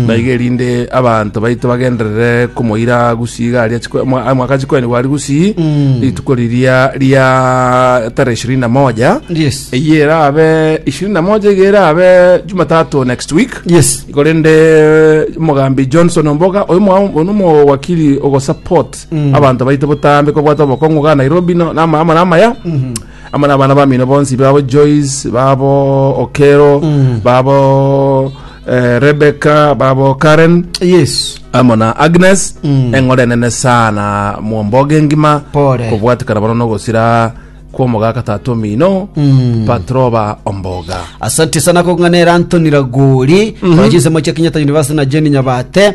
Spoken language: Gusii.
naiga erinde abanto baito bagenderere komoira gusii iga aria chiko- mwa- ah, mwaka chikoenigwa aria gusii rituko riria ria tarehe ishirini na moja Yes. eye erabe ishirini na moja iga erabe jumatatu next week Yes. iko rende omogambi johnson omboga oyo mwa- oyo nomowakili ogosupport abanto baito botambe kobwata obokong'u ga nairobi no- nama ama namaya amo n'abana bamino bonsi babo joyce babo okero Mm. babo eh, rebecca babo karen yes amo na agnes Mm. eng'ore enene sana mwomboge ngima Pore. kobwatikana bono nogosira kwomogaka tata omino Mm. patroba omboga asante sana kong'anera antoni ragori mm -hmm. moche kenyatta university na jeni nyabate